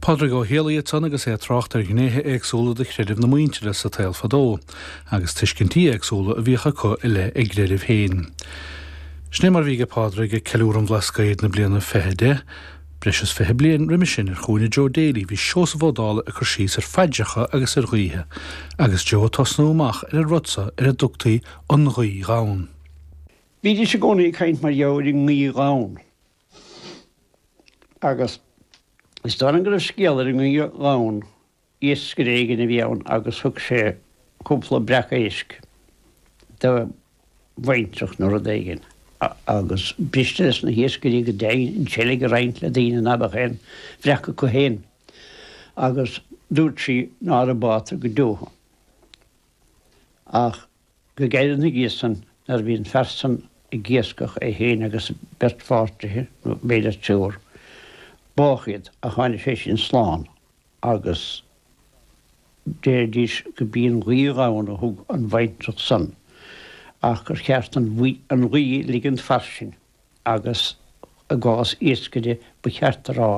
Pádraig Ó Héalaí ansan agus é ag trácht ar ghnéithe éagsúla de chreideamh na muintire sa tsaol fadó, agus tuiscintí éagsúla a bhíodh acu i leith a gcreideamh féin. Sin é mar bhí aige Pádraig ag Ceiliúradh an Bhlascaoid na bliana fiche deich. Breis is fiche bliain roimis sin, ar chúinne Joe Daly, bhí Seosamh Ó Dálaigh ag cur síos ar phaidreacha agus ar ghuíthe, agus Joe ag tosnú amach ar an rud so ar a dtugtaí 'An Ghuí Ghann'. Bhídís i gcónaí ag caint mar gheall ar an nguí ghann. Agus is dóigh liom go raibh scéal ar an nguí ghann, iascaire éigin a bhí ann agus thug sé cúpla breac éisc do bhaintreach nó rud éigin. Agus b'fhuiriste leis na hiascairí go deimhin an tseilg a roinnt le daoine ná beadh aon bhreac acu féin. Agus dúirt sí nára bátar go deo thú. Ach. Go gairid na dhiaidh san, nuair a bhí an fear san ag iascach, é féin agus a bheirt pháirtithe, nó b'fhéidir triúr, bádh iad, ach tháinig sé sin slán, agus deiridís go b'í an ghuí ghann a thug an bhaintreach san, ach gur cheart an ghuí a ligint fairsing. agus i gcás iascaire ba cheart a rá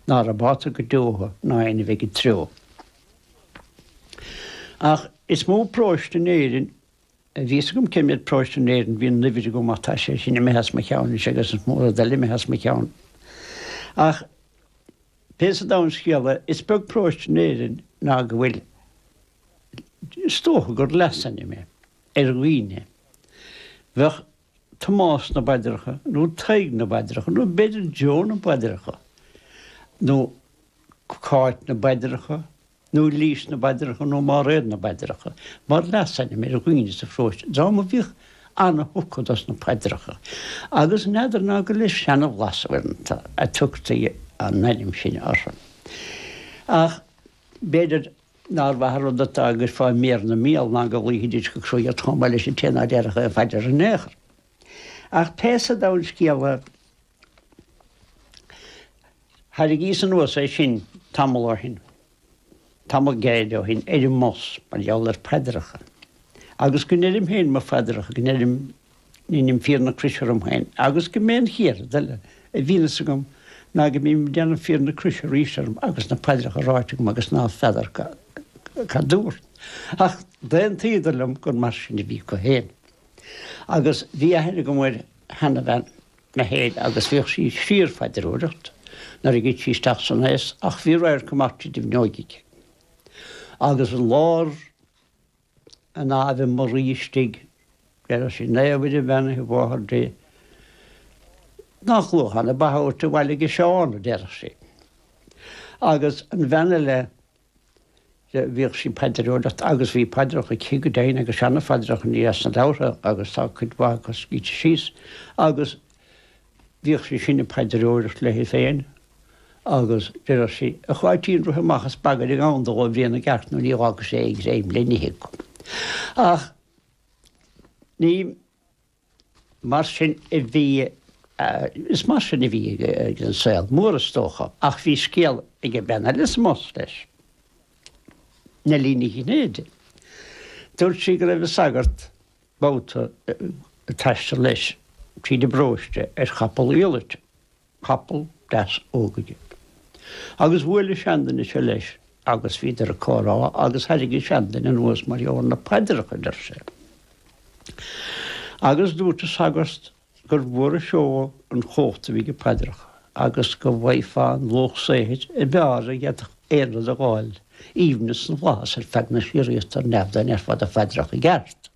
nára bátar go deo thú ná aoinne a bheidh id threo. Ach is mó paróiste in Éirinn bhí a fhios agam cé mhéad paróiste in Éirinn bhí an uimhir agam ach tá sé sin imithe as mo cheann anois agus is mó rud eile imithe as mo cheann. Ach pé sa domhan scéal é, is beag paróiste in Éirinn ná go bhfuil, is dócha gur leasainm é, ar dhaoine. Bheadh Tomás na bpaidreacha, nó Tadhg na bpaidreacha, nó b'fhéidir Joe na bpaidreacha, nó Cáit na bpaidreacha, nó Lís na bpaidreacha, nó Máiréad na bpaidreacha, mar leasainm ar dhaoine sa pharóiste. Dream a bhíodh ana-thugtha dos na paidreacha, agus n'fheadar ná gur le seana-bhlas uaireanta a tugtaí an ainm sin orthu. Ach b'fhéidir. Nár mhaith an rud atá agus fá mhéar na míol ná go gcloífidís go cruaidh chomh maith leis an té ná déarfadh aon phaidir ar aon chor. Ach pé sa domhan scéal é, tharraingíos anuas é sin tamall ó shin, tamall gearr ó shin, ar an mbus, mar gheall ar phaidreacha. Agus go ndeirim féin mo phaidreacha, go ndeirim. ndeinim fíor na croise orm féin agus go mb'é an chéad rud eile a bhíonn a fhios agam ná go mbím ag déanamh fíor na croise arís orm agus na paidreacha ráite agam agus ná feadar cad dúrt. Ach d'aontaíodar liom gur mar sin a bhí acu féin. Agus bhí aithne agam ar sheanabhean mé féin agus bhíodh sí ag síorphaidreoireacht nuair a thit sí isteach san aois ach bhí radharc amach tríd an bhfuinneoig aici agus an lár an Aibhe Muirí istigh. Deireadh sí, Naomh Mhuire bheannaithe a mháthair Dé, nach luath atá na ba tabhartha abhaile age Seán, a deireadh sí. Agus an bhean eile, bhíodh sí ag paidreoireacht agus bhí paidreacha aici go deimhin agus seana-phaidreacha, ní as na leabhartha agus tá cuid mhaith acu scríte síos. Agus. Bhíodh sí sin ag paidreoireacht léi féin agus deireadh sí, A Cháitín, rith amach is bagair an gandal ó bhia na gcearc nó ní fhágfaidh sé aon ghreim le n-ithe acu. Ach ní mar sin a bhí, is mar sin a bhí ag an saol mór is dócha. Ach bhí scéal ag an mbean eile sa mbus leis, Neilí Ní Chinnéide. Dúirt sí go raibh an sagart. babhta ag taisteal leis tríd an bparóiste ar chapall iallait, capall deas óg aige. Agus bhuail an seanduine seo leis agus bhíodar ag comhrá agus thairrig an seanduine anuas mar gheall ar na paidreacha a deir sé. Agus dúirt an sagart. gur mhór an seó an chomhacht a bhí ag paidreacha, agus go bhfaighfeá an luach saothair a b'fhearr a d'fhéadfadh aon rud a dh'fháil, aoibhneas na bhflaitheas ar feadh na síoraíochta ar neamh dá ndéarfá do phaidreacha i gceart.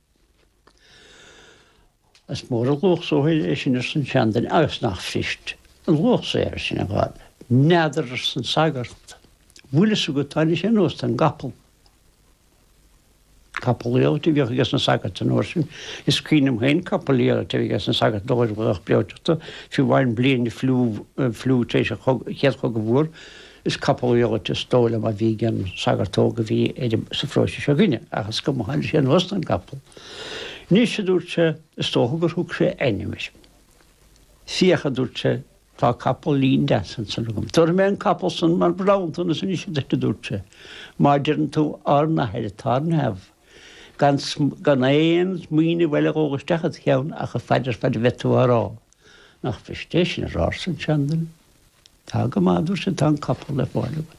Is mór an luach saothair é sin arsa an seanduine agus nach fuirist an luach saothair sin a dh'fháil. N'fheadar arsa an sagart. Bhfuil fhios agat tháinig sé anuas den gcapall. Capall iallait a bhíodh ages na sagairt an uair sin. Is cuimhin liom féin capall iallait a bheith ages na sagairt ag dul ar ghlaoch breoiteachta, fiú amháin bliain an fliú, fliú tar éis an Chéad Chogaidh Mhór, is capall iallait is dóigh liom a bhí ag an sagart óg a bhí ar an, sa pharóiste seo againne. Ach is cuma, tháinig sé anuas den gcapall. Anois, a dúirt sé, is dócha gur thug sé a ainm air. Féach, a dúirt sé, Tá capaillín deas ansan agam. Tabharfaidh mé an capall san mar bhronntanas anois duit, a dúirt sé, má deireann tú Ár nAthair atá ar neamh, gan gan aon smaoineamh eile a dhul isteach id cheann ach an phaidir fad a bheidh tú á rá. Nach fuirist é sin a rá, arsan seanduine. Tá go maith, a dúirt sé, tá an capall le fáil uaim.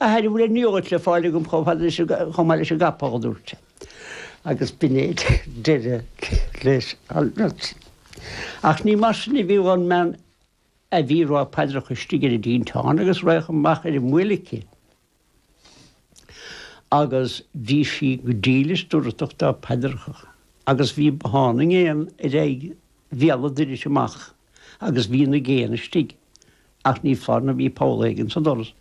A Athair, an bhfuil an iallait le fáil agam chomh fada leis an, chomh maith leis an gcapall? a dúirt sé, agus b'in é deireadh leis an mbeirt. Ach ní mar sin a bhí dhon mbean a bhí ag rá paidreacha istigh ar an dtinteán agus radharc amach ar an mbuaile aici, agus bhí sí go dílis dúthrachtach dá paidreacha, agus bhí bothán na ngéanna ar aghaidh bhéal an doiris amach agus bhí na géanna istigh, ach ní foláir nó bhí poll éigin sa doras.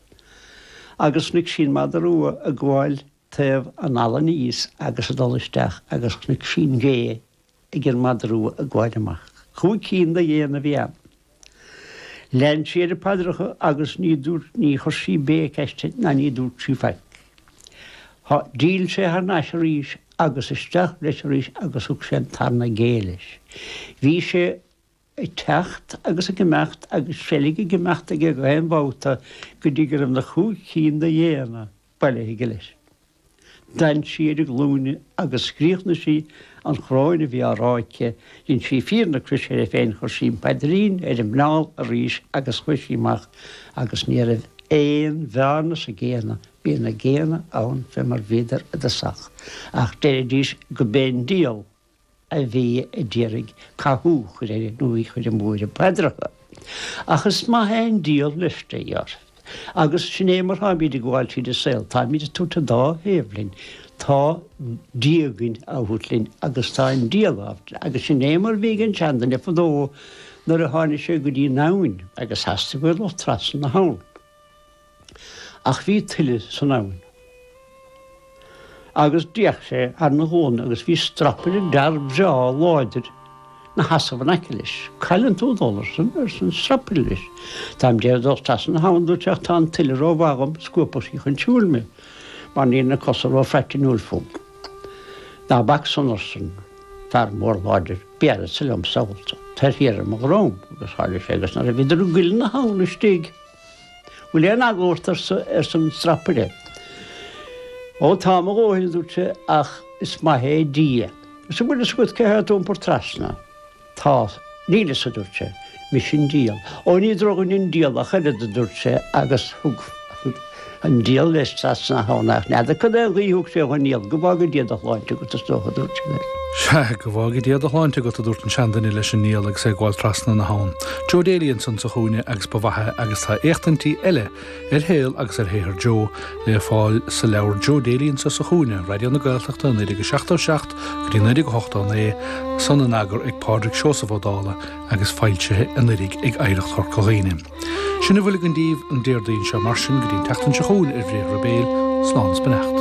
Agus chnuic sí an mada rua ag gabháil taobh an fhalla aníos agus ag dul isteach agus chnuic sí an ghé ag an mada rua ag gabháil amach. Cúig cinn de ghéanna a bhí ann. Lean sí ar a paidreacha agus ní dúirt, ní chuir sí béic aisti ná ní dúirt sí faic. Há, d'fhill sé thar n-ais arís agus isteach leis arís agus thug sé an tarna gé leis. Bhí sé. ag teacht agus ag imeacht agus seilg ag imeacht aige gach aon bhabhta go dtí go raibh na chúig chinn de ghéanna bailithe aige leis. D'fhan sí ar a glúine agus chríochnaigh sí an choróin a bhí á rá aici, dhein sí fíor na croise uirthi féin, chuir sí an paidrín ar a muineál arís agus chuaigh sí amach agus ní raibh aon bhearna sna géanna, bhí na géanna ann fé mar bhíodar i dtosach, ach deiridís go b'é an diabhal. a bhí a d'iarraidh cathú a chur uirthi í a chur amú ar a paidreacha ach is maith é an diabhal leisce a dhéanamh agus sin é mar táimid ag gabháil tríd an saol, táimid ag tabhairt an dá thaobh linn, tá Dia againn á thabhairt linn agus tá an diabhal á thabhairt linn agus sin é mar bhí ag an seanduine fadó nuair a tháinig sé go dtí an abhainn agus theastaigh uaidh dul trasna na habhann. Ach bhí tuile san abhainn agus d'fhéach sé ar na gúna agus bhí strapaire d'fhear breá láidir ina sheasamh in aice leis. Cá bhfuileann tú ag dul arsan, arsa an strapaire leis. Táim d'iarraidh dul trasna na habhann a dúirt sé ach tá an tuile ró mhaith agam scuabfadh sí chun siúil mé mar níl na cosa ró phraitiniúil fúm. Ná bac san, arsa an fear mór láidir. Béarfadsa liom sábhálta thú. Tar thiar ar mo dhrom, agus tharla sé agus nuair a bhíodar i gcuilithe na habhann istigh, Bhfuil aon eagla ort arsa arsa an strapaire. Ó tá mo dhóthain a dúirt sé ach is maith é Dia. Is an bhfuil fhios agat cé tá ad iompar trasna. Tá. Níl fhios a dúirt sé. Mise an Diabhal. Ó ní drochdhuine an Diabhal ach oiread a dúirt sé agus thug. An diabhal leis trasna é ach n'fheadar cad é a ghuífeadh sé dhon diabhal, go bhfága Dia do shláinte agat, is dócha, a dúirt sé leis. Sea, go bhfága Dia do shláinte agat, a dúirt an seanduine leis an ndiabhal agus é ag gabháil trasna na habhann. Joe Daly ansan sa chúinne agus ba mhaith é agus tá éachtaintí eile ar shaol agus ar shaothar Joe le fáil sa leabhar Joe Daly Anso sa Chúinne, Raidió na Gaeltachta, 1977 go dtí 1989, san in eagar ag Pádraig Seosamh Ó Dála agus foilsithe anuraidh ag Oidhreacht Chorca Dhuibhne. Sin a bhfuil againn daoibh an Déardaoin seo, mar sin, go dtí an tseachtain seo chugainn, ar Bhriathra Béil, slán is beannacht.